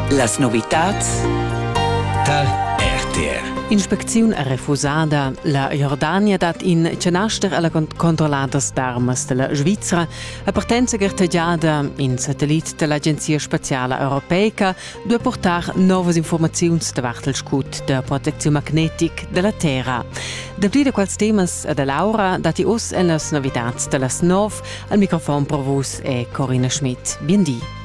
Las novitads tar RTR. Inspecziun è refusada. La Jordania dat in canaster a la controlladas d'armas da la Svizra a partenza gartegiada. In satellit da l'Agenzia spaziala europeica duai portar novas informaziuns davart il scut da proteziun magnetic da la Terra. Dapli da quels temas e da Laura datti oz en las novitads da las nov Al microfon per vus è Corina Schmidt. Bien di.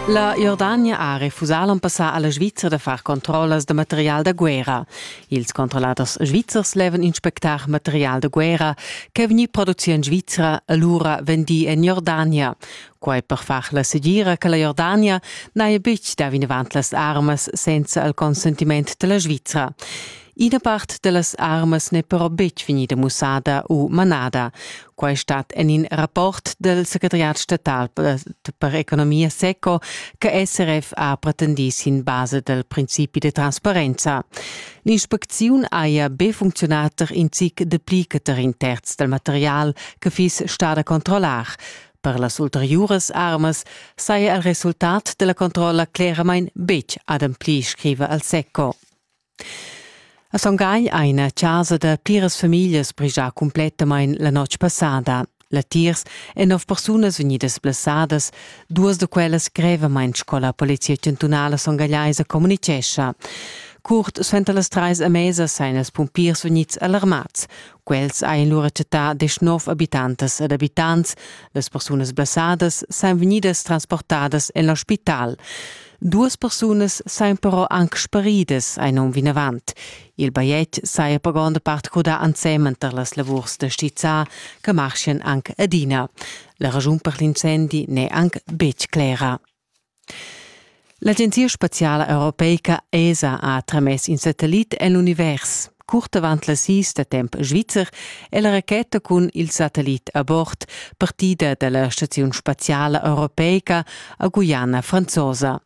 La Jordania ha refusà l'on passà a la Svizra da far controllas da material da guerra. Ils controlladers svizzers levan inspectar material da guerra ch'è vegnì produci en Svizra e lura vendì en Jordania. Quai per far la segira che la Jordania n'haja betg dà vinavant las armas senza il consentiment da la Svizra. Ina part da las armas n'è però betg vegnida mussada u manada. Quai stat en in rapport del secretariat statal per economia seco che SRF ha pretendì sin basa del principi de transparenza. L'inspecziun haja be funcziunà tar in zic de pli che tar in terz del material che fiss stada controllar. Per las ulteriuras armas saja il resultat della controlla cleramain betg ademplì, scriva al SECO. A Son Gai ha ina chasa da pliras famiglias brigià cumplettamain la notg passada. Latiers èn nov persunas vegnidas blessadas, duas da quellas grevamain sco la Polizia chantunala songaiaisa communitgescha. Curt suenter las trais a mesa sajan els pumpiers vegnids alarmads. Quels ein lura chattà desch nov abitantas ed abitants. Las persunas blessadas san vegnidas transportadas en l'ospital. Duas persunas san però anc sparidas ein um vinavant. Il bajetg saja per gronda part crudà ensemen tar las lavurs da stizzar che marschien anc adina. La ragiun per l'incendi n'è anc betg clera. L'agenzia spaziala europeica ESA ha tramess in satellit en l'univers. Curt avant las sis da temp svizzer è la racheta cun il satellit a bord partida da la staziun spaziala europeica a Guyana franzosa.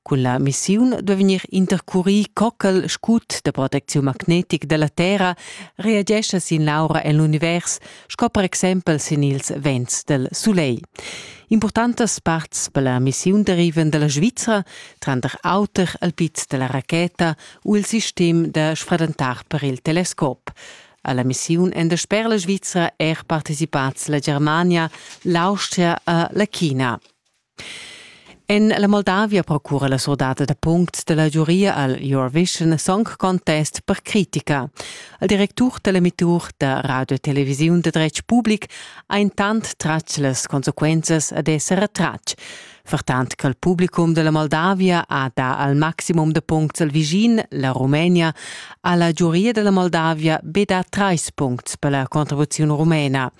Cun la missiun duai vegnir intercurì cockel scut da protecziun magnetic da la Terra, reagescha sin l'aura en l'univers sco per exempel sin ils vents del sulegl. Importantas parts per la missiun derivan della Svizzera, tranter auter al piz della racheta u il sistem da sfradentar per il telescop. Alla missiun en der sper la Svizzera er partecipats la Germania, l'Austria e la China. En la Moldavia procura la surdata da punct della giuria al Eurovision Song Contest per critica. Il directur dell'emittur da radio e televisiun de dretg public ha intant tratg las consequenzas ad esser retratg. Vertant che il publicum della Moldavia ha da al maximum de puncts al Visin, la Rumenia, ha la giuria della Moldavia be da treis puncts per la contribuzione rumena.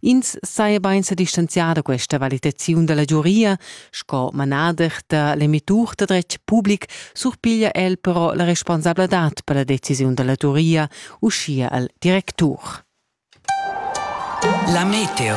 Ins saja bain sa distanzià da questa valitaziun da la giuria, sco manader da l'emitur da dretg public surpiglia el però la responsabladad per la decisiun da la giuria, uschia al directur. La meteo.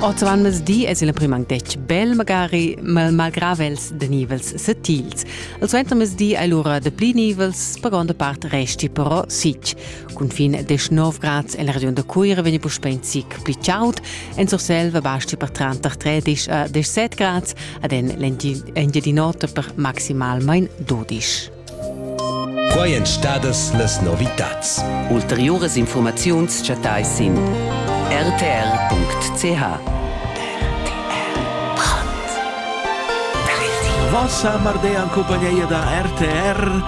Oz avant mezdi es il prim anc detg bel, magari malgrà els de nivels setils. Il suentermezdi è lura de pli nivels, per gonda part resti però sic. Cunfin desch nov grads en la regiun da Cuira vegni puspè in zic pli chaud. En Surselva basti per tranter 13 a 17 grads, ad Engiadin'Ota per maximalmain 12. Quai èn stadas las novitads. Ulteriuras informaziuns chattai sin rtr.ch. Vossa Mardea en cumpagnia da RTR